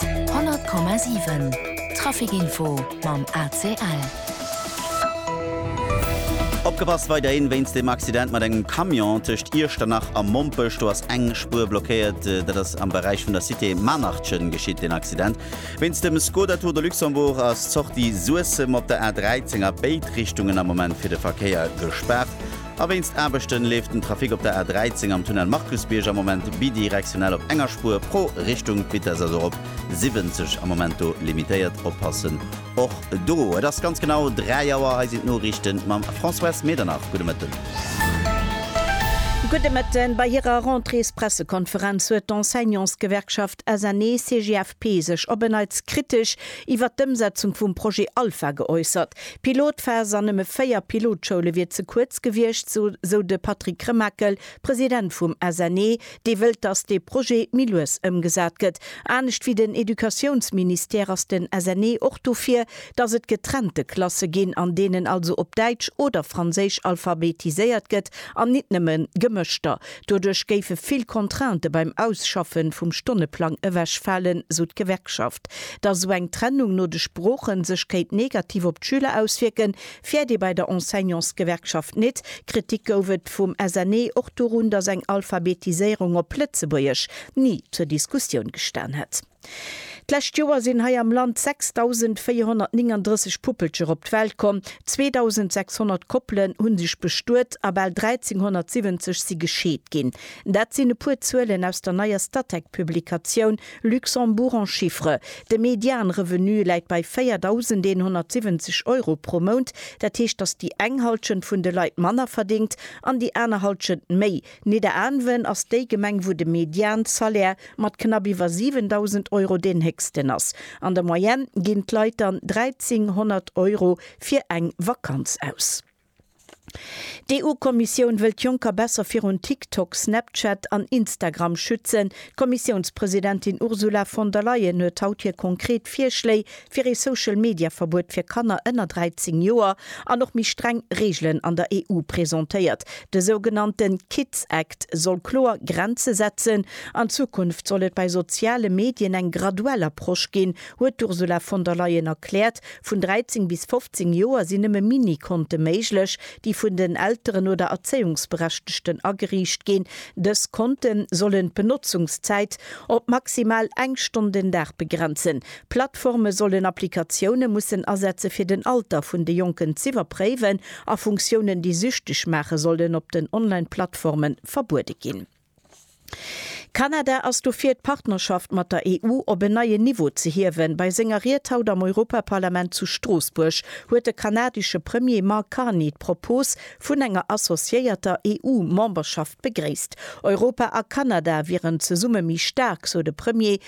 100,7 Trafic Info mam ACL. Opgepasst weiderhin wéinst dem Accident mat engem Camion tëscht Iechternach a Mompech. Do ass eng Spuer blockéiert. Dat ass am Beräich vun der Cité Maarnachchen geschitt, den Accident. Wéinst dem Skoda Tour de Luxembourg ass d'Sortie Suessem op der A 13 a béid Richtungen am Moment fir de Verkéier gespaart. A wéinst Aarbechten leeft den Trafic op der A 13 am Tunnel Markusbierg am Moment bidirektionell op enger Spuer pro Richtung. D'Vitesse ass och op 70 am Moment do limitéiert. Oppassen och do. Et ass ganz genau 3 Auer. Hei sinn d'Noriichten mam Françoise Medernach. Gudde Mëtten. Gudde Mëtten. Bei hirer Rentréespressekonferenz huet d'Enseignantsgewerkschaft SNE-CGFP sech op e Neits kritesch iwwert d'Ëmsetzung vum Projet Alpha geäussert. D'Pilotphas an nëmme véier Pilotschoule wier ze kuerz gewiescht, sou de Patrick Remakel, President vum SNE, dee wëllt, datt dee Projet méi lues ëmgesat gëtt. Anescht wéi den Educatiounsministère ass den SNE och dofir, datt et getrennte Klasse ginn, an deenen also op Däitsch oder Franséisch alphabetiséiert gëtt an nit nëmme gemëschter Doduerch géife vill Contrainte beim Ausschaffe vum Stonneplang ewechfalen, sou d'Gewerkschaft. Datt esou eng Trennung no de Sprooche sech kéint negativ op d'Schüler auswierken, fäert ee bei der Enseignantsgewerkschaft nit. Kritik gouf et vum SNE och dorun, datt eng Alphabetiséierung op Lëtzebuergesch ni zur Diskussioun gestan hätt. D'lescht Joer sinn hei am Land 6.439 Puppelcher op d'Welt komm, 2.600 Koppelen hu sech bestuet a bal 1.370 si gescheet ginn. Dat sinn e puer Zuelen aus der neier Statec-Publikatioun Luxembourg en chiffres. De Median-Revenu läit bei 4.170 Euro pro Mount. Dat heescht, datt déi eng Hallschent vun de Leit manner verdéngt an déi aner Hallschent méi. Nidderaanwen ass déi Gemeng wou de Median-Salaire mat knapp iwwer 7.000 Euro deen héchsten ass. An der Moyenne ginn d'Leit dann 1.300 Euro fir eng Vakanz aus. D'EU-Kommissioun wëll d'Jonker besser virun TikTok, Snapchat an Instagram schützen. D'Kommissiounspresidentin Ursula von der Leyen huet haut hir konkret Virschléi fir ee Social Media Verbuet fir Kanner ënner 13 Joer an och méi streng Reegelen an der EU presentéiert. De sougenannte Kids Act soll kloer Grenze setzen. An Zukunft soll et bei soziale Medien eng graduell Approche ginn, huet d'Ursula von der Leyen erkläert. Vun 13 bis 15 Joer sinn nëmme Mini-Konte méiglech, déi vun den Elteren oder Erzéiungsberechtegten ageriicht ginn. Dës Konte sollen d'Benotzungszäit op maximal eng Stonn den Dag begrenzen. D'Plattforme sollen Applikatioune mussen asetze fir den Alter vun de Jonken z'iwwerpréiwen a Funktiounen, déi süchteg maachen, sollen op den Online-Plattforme verbuede ginn. Kanada ass dofir, d'Partnerschaft mat der EU op en neien Niveau ze hiewen. Bei senger Ried haut am Europaparlament zu Stroossbuerg huet de kanadesche Premier Mark Carney d'Propos vun enger associéierter EU-Memberschaft begréisst. Europa a Kanada wieren zesumme méi staark, sou de Premier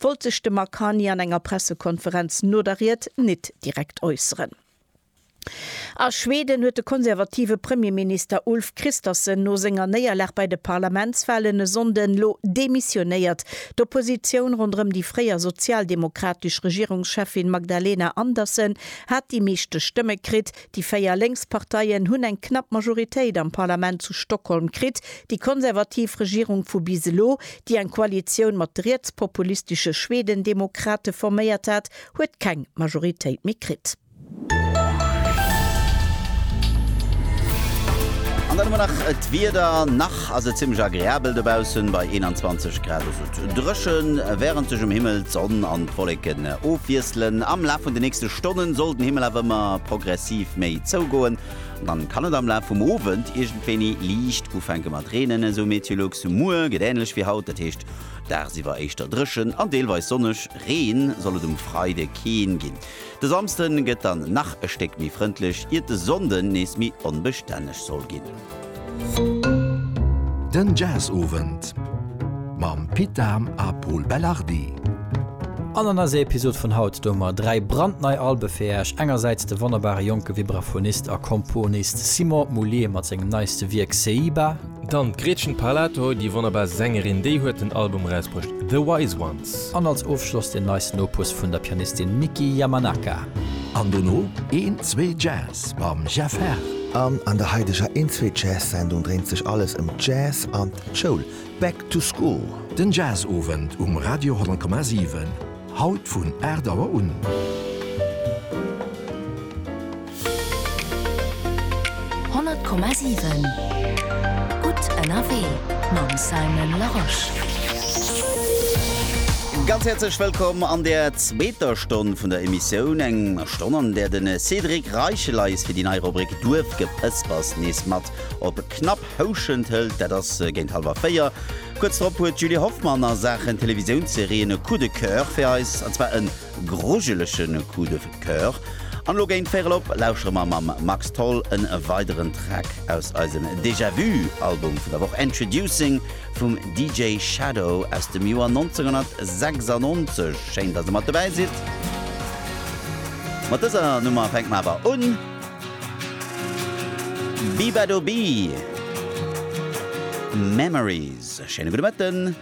wollt sech de Mark Carney an enger Pressekonferenz no der Ried nit direkt äusseren. A Schweden huet de konservative Premierminister Ulf Kristersson no senger Néierlag bei de Parlamentswalen e Sonnden elo demissionéiert. D'Oppositioun ronderëm déi fréier sozialdemokratesch Regierungscheffin Magdalena Andersson hat déi meeschte Stëmme kritt. Déi véier lénks Parteien hunn eng knapp Majoritéit am Parlament zu Stockholm kritt. Déi konservativ Regierung vu bis elo, déi eng Koalitioun mat de rietspopulistesche Schwedendemokrate forméiert hat, huet keng Majoritéit méi kritt. An dann hu mer nach d'Wieder, nach ass et zimmlech agreabel dobaussen bei 21 Grad. Dréchen, wärend sech um Himmel d'Sonn an d'Wolleken ofwiesselen. Am Laf vun de nächste Stonnen soll den Himmel awer ëmmer progressiv méi zougoen, dann kann et am Laf vum Owend iergendwéini liicht ufänke mat reenen, esou Meteolux. Muer gëtt änlech wéi haut, dat heescht dagsiwwer éischter dréchen an deelweis sonneg, Reen soll et um Freide keen ginn. De Samsden gëtt dann nach e Stéck méi frëndlech, iert de Sonnden nees méi onbestänneg soll ginn. Den Jazzowend mam Pit Dahm a Pol Belardi. An an eiser Episod vun haut doe mer 3 brandnei Albe fir Äech, engersäits de wonnerbare jonke Vibraphonist a Komponist Simon Moullier mat sengem neiste Wierk Seiba, Dann d'Gretchen Parlato, déi wonnerbar Sängerin, déi huet den Album erausbruecht The Wise Ones. An als Ofschloss den neisten Opus vun der Pianistin Miki Yamanaka. An dono een, zwee Jazz. Jazz mam Jeff Herr. An an der haideger Inswee Jazz Sendung dréint sech alles ëm Jazz an d'Schoul, Back to School. Den Jazz Owend um Radio 10,7, haut vun 8 Auer un. 100,7 Gutt ënnerwee mam Simon Larosche. Ganz häerzlech wëllkomm an der zweeter Stonn vun der Emissioun. Eng. D'Ronn an där de Cédric Reicheleis fir déi nei Rubrik Duerfgepëspers nees mat op Knapphouschent hëlt, dat ass géint hallwer 4. Kuerz drop huet d'Julie Hoffmann a Saachen Televisiounsserien e Coup de Coeur fir eis, an zwar e grujelege Coup de Coeur. An elo géint véierel op lauschere mer mam Max Tholl e weideren Track aus eisem Déjà-Vu Album vun der Woch, Introducing. vum DJ Shadow aus dem Joer 1996. Schéin, dass Der mat dobäi sidd. Mat dëser Nummer fänke mer awer un. Beabadoobee, Memories. Schéine gudde Mëtten.